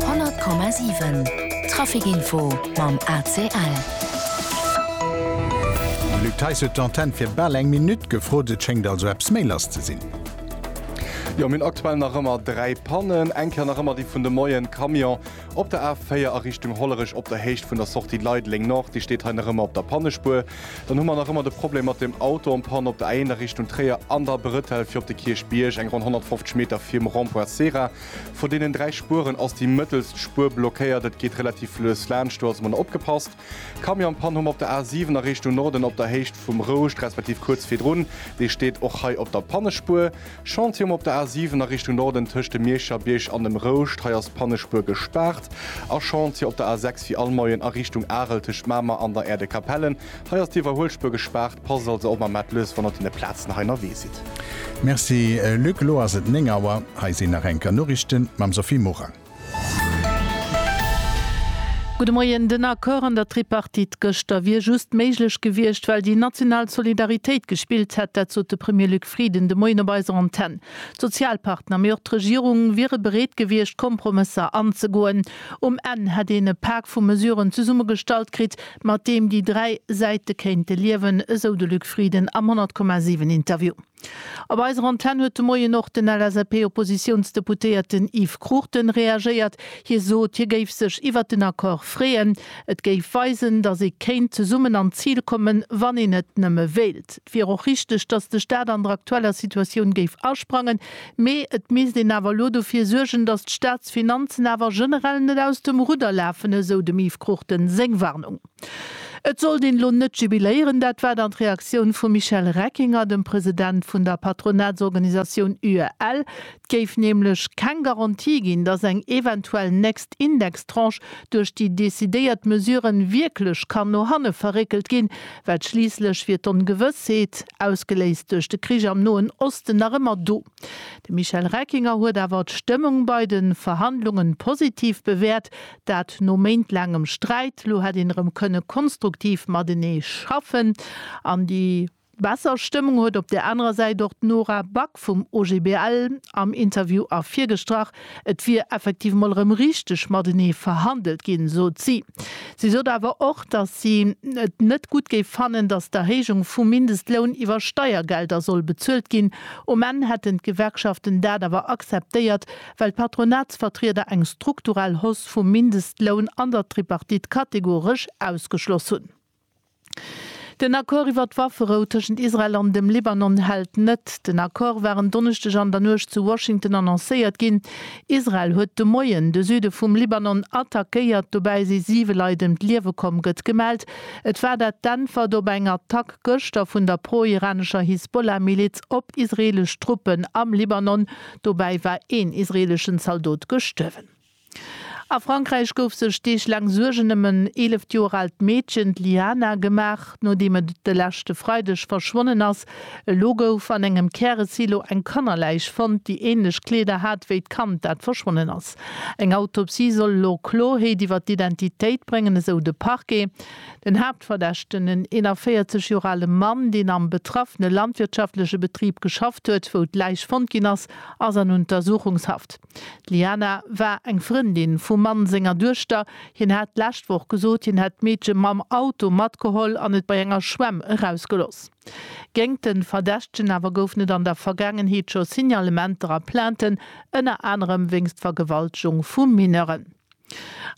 100,7 Trafic Info mam ACL. De Luc Theis huet d'Antenn fir bal eng Minutt gefrot. Et schéngt also eppes méi lass ze sinn. Jo, mir hunn aktuell nach ëmmer 3 Pannen. Eng Kéier nach ëmmer déi vun de Moien, Camion op der A4 a Richtung Hollerech op der Héicht vun der Sortie Leideleng Nord, dee steet hei nach ëmmer op der Pannespuer. Dann hu mer nach ëmmer de Problem mat dem Auto en panne op der Éinener Richtung Tréier an der Bretelle fir op de Kierchbierg, eng ronn 150 Meter virum Rond-point Cera. Vu deenen dräi Spueren ass déi mëttelst Spuer blockéiert. Et geet relativ lues laanscht, do ass emol opgepasst. Camion en panne hu mer op der A7 a Richtung Norden op der Héicht vum Rouscht, respektiv kuerz virdrun, dee steet och hei op der Pannespuer. Chantier um op der A 7 a Richtung Norden tëscht dem Mierscher Bierg an dem Rouscht, hei ass d'Pannespuer gespaart, a Chantier op der A 6 wéi all Moien a Richtung Arel tëscht Mamer an der Äerdekapellen, hei ass d'Iwwerhuelspuer gespaart. Passt also op mam Mat lues, wann der op deene Plazen hei ënnerwee sidd. Merci Luc, elo ass et 9 Auer, hei sinn nach enker Noriichten mam Sophie Morang. Gudde Moien. Den Accord an der Tripartite gëschter wier just méiglech gewiescht, well déi national Solidaritéit gespillt hätt. Dat sot de Premier Luc Frieden de Moien op eiser Antenn. D'Sozialpartner, mee och d'Regierung wiere bereet gewiescht, Kompromësser anzegoen. Um Enn hätt een e Pak vu Mesuren zesummegestallt kritt, mat deem déi dräi Säite kéinte liewen, esou de Luc Frieden am 100,7 Interview. Op eiser Antenn huet de Moien och den LSAP-Oppositiounsdeputéierten Yves Cruchten reagéiert. Hie sot, hie géif sech iwwert den Accord freeën. Et géif weisen, datt ee kéint zesummen an d'Zil kommen, wann een et nëmme wéilt. Et wier och richteg, datt de Staat an der aktueller Situatioun géif asprangen, mee et misst een awer elo dofir suergen, datt d'Staatsfinanzen awer generell net aus dem Rudder lafen, esou dem Yves Cruchten seng Warnung. Et sollt een elo net jubiléieren, dat war dann d'Reaktioun vum Michel Reckinger, dem President vun der Patronatsorganisatioun UEL. Et géif nämlech keng Garantie ginn, datt eng eventuell nächst Indextranche duerch déi decidéiert Mesure wierklech kann no hanne verréckelt ginn, well schliisslech wier d'Ongewëssheet, ausgeléist duerch de Krich am Noen Osten, nach ëmmer do. De Michel Reckinger huet awer d'Stëmmung bei de Verhandlunge positiv bewäert, dat no méintlaangem Sträit. Lo hätt een erëm kënne konstruktiv matenee schaffen. An déi besser Stëmmung huet op där anerer Säit och d'Nora Back vum OGBL am Interview ervirgestrach. Et wier effektiv mol erëm richteg matenee verhandelt ginn, sot si. Si sot awer och, datt si et net gutt géif fannen, datt d'Erhéijung vum Mindestloun iwwer Steiergelder soll bezuelt ginn. Um Enn hätten d'Gewerkschaften dat awer akzeptéiert, well d'Patronatsvertrieder eng strukturell Hausse vum Mindestloun an der Tripartite kategoresch ausgeschloss hunn. Den Accord iwwert d'Wafferou tëschent Israel an dem Libanon hält net. Den Accord war en Donneschdeg an der Nuecht zu Washington annoncéiert ginn. Israel huet de Moien de Süde vum Libanon attackéiert, dobäi si siwe Leit ëm d'Liewe komm, gëtt gemellt. Et war dat d'Äntwert op eng Attack gëschter vun der pro-iranescher Hisbollah-Miliz op israeelesch Truppen am Libanon. Dobäi war een israeeleschen Zaldot gestuerwen. A Frankräich gouf sech Deeg laang Suergen ëm en 11 Joer aalt Meedchen, d'Liana, gemaach, nodeem et de leschte Freideg verschwonnen ass. Elo gouf an engem Käresilo eng Kannerläich fonnt, déi änlech Kleeder hat wéi d'Kand, dat verschwonnen ass. Eng Autopsie soll elo Kloheet iwwer d'Identitéit bréngen, esou de Parquet. Den Haaptverdächten, en 41 Joer ale Mann, deen am betraffene landwirtschaftleche Betrib geschafft huet, wou d'Läich fonnt ginn ass, ass an Untersuchungshaft. D'Liana war eng Frëndin vum Mann senger Duechter. Hien hat d'lescht Woch gesot, hien hätt d'Meedche mam Auto matgeholl an et bei enger Schwämm erausgeloss. Géingt de Verdächtegen awer goufen et an der Vergaangenheet scho Signalementer a Plainten, ënner anerem wéinst Vergewaltegung vu Mineuren.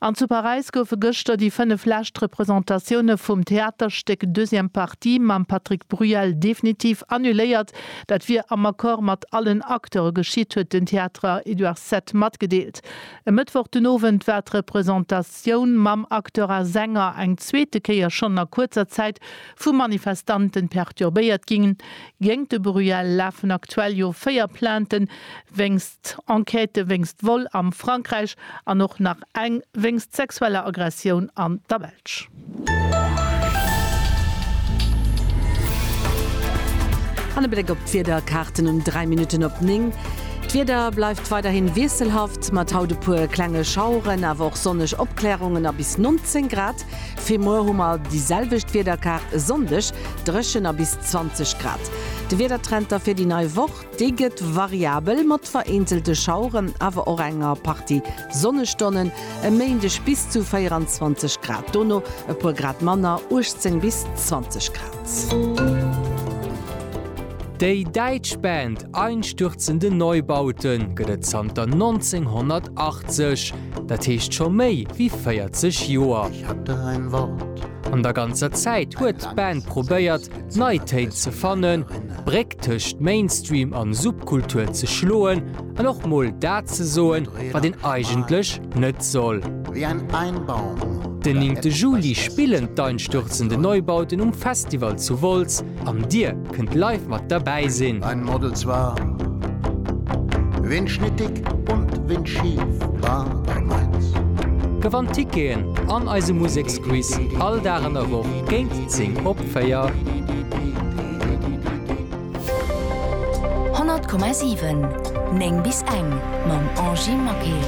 An zu Paräis goufe gëschter déi 5 lescht Representatioune vum Theaterstéck Deuxième partie mam Patrick Bruel definitiv annuléiert. Dat wier am Accord mat allen Acteure geschitt, huet den Theatre Édouard Sept matgedeelt. E Mëttwoch den Owend war d'Representatioun mam Acteur a Sänger eng zweete Kéier schonn a kuerzer Zäit vu Manifestanten perturbéiert ginn. Géingt de Bruel lafen aktuell jo 4 Plainten wéinst. Enquête wéinst Vol am Frankräich an och nach eng wéinst sexueller Aggressioun an der Belsch. An e Bléck op d'Wiederkaarten um 3 Minutten op 9. D'Wieder bleift weiderhi wiesselhaft, mat haut e puer klenge Schaueren, awer och sonneg Opklärungen a bis 19 Grad. Fir muer hu mer déi selwecht Wiederkaart, e Sonndeg dréchen a bis 20 Grad. De Wiedertrend da fir déi nei Woch. Déi gëtt variabel mat vereenzelte Schaueren, awer och enger Partie Sonnestonnen. E Méindeg bis zu 24 Grad, dono e puer Grad manner, 18 bis 20 Grad. Déi däitsch Band Einstürzende Neubaute gëtt et zanter 1980, dat heescht scho méi wéi 40 Joer. An der ganzer Zäit huet d'Band probéiert, d'Neitéit ze fannen, d'Bréck tëscht Mainstream an Subkultur ze schloen an och mol dat ze soen, wat een eigentlech net soll. Den néngte Juli spillen d'Einstürzende Neubauten um Festival zu Wolz an dir kënnt live mat derbäi sinn. Gewannt Ticketen an eise Museksquiz all Dag an der Woch géint 10 op. 4. 100,7 9 bis eng mam Angie Maquet.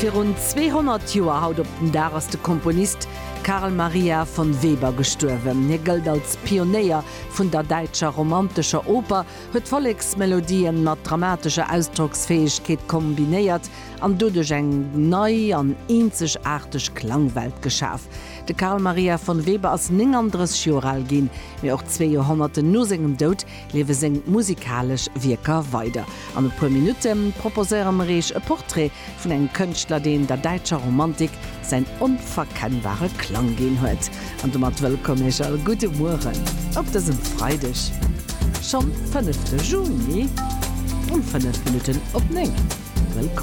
Virun 200 Joer haut op den Dag ass de Komponist Carl Maria von Weber gestuerwen. Hie gëllt als Pionéier vun der däitscher romantescher Oper, huet Volleksmelodien mat dramatescher Ausdrocksfäegkeet kombinéiert an doduerch eng nei an eenzegaarteg Klangwelt geschaf. De Carl Maria von Weber ass 39 Joer al ginn, mee och zwee Joerhonnerten no sengem Doud liewe seng musikalesch Wierker weider. An e puer Minutte proposéiere mer Iech e Portrait vun engem Kënschtler, deen der däitscher Romantik säin onverkennbare Klang ginn huet. An domat wëllkomm Iech all, gudde Mueren op dësem Freideg, schonn fënnefte Juni um fënnef Minutten op néng. Wëllkomm.